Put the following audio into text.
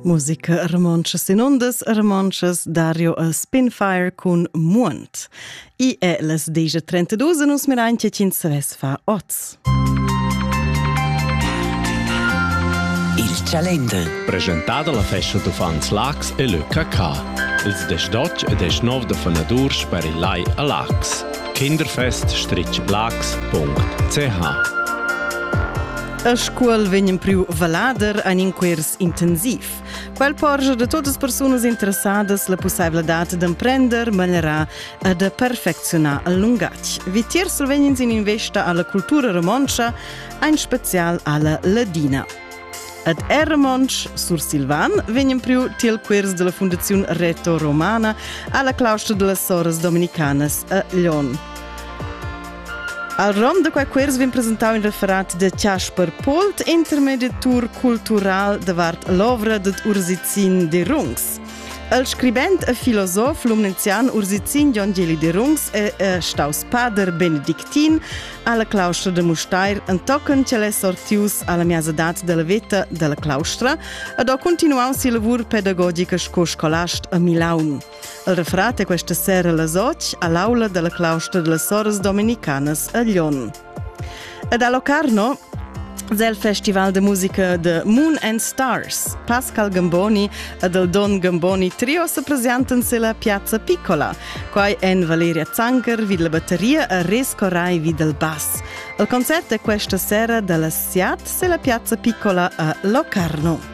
Musica romontscha sin ondas romontschas Dario a Spinfire cun Muont. I è las 10.32 e nus mirain che ins ves fa oz. Il Calender. Presentada la festa d'uffants Lax e le KK. Ils 18 e 19 da fanadurs per il Lai a Lax. Kinderfest-lax.ch A scuol vegn empriu valader ein in quers intensiv. Quel porgia de todas as persunas interessadas la possibilidad d'emprender manerà e de perfeccionar il lungatg. Vitier solvegns in investa alla cultura romontscha, ein spezial alla ladina. Ad er Romontsch Sursilvan vegn priu tiel quers della Fundaziun Reto Romana alla claustra delle Soras Dominicanas a Lyon. Al rom da quai quiz vegn presentau in referat de Chasper Pult, intermediatur cultural davart l'ovra dad Ursicin de Rungs. Il scribent e filosof lumnezian Ursicin Jon Geli de Rungs è e staus pader benedictin alla claustra de Mustair entochen ch'el è sortius alla miazadat della veta della claustra ed ha continuau si lavur pedagogica sco scolast a Milaun. El refrat è questa sera las otg a l'aula della claustra delle soras dominicanas a Lyon. Ed a Locarno del Festival de Musica de Moon and Stars. Pascal Gamboni ed el Don Gamboni trio se presentan se la Piazza Piccola. Quai en Valeria Zanker vid la batteria e Resco Rai vid el bass. Il concert è questa sera dalla Siat se la Piazza Piccola a Locarno.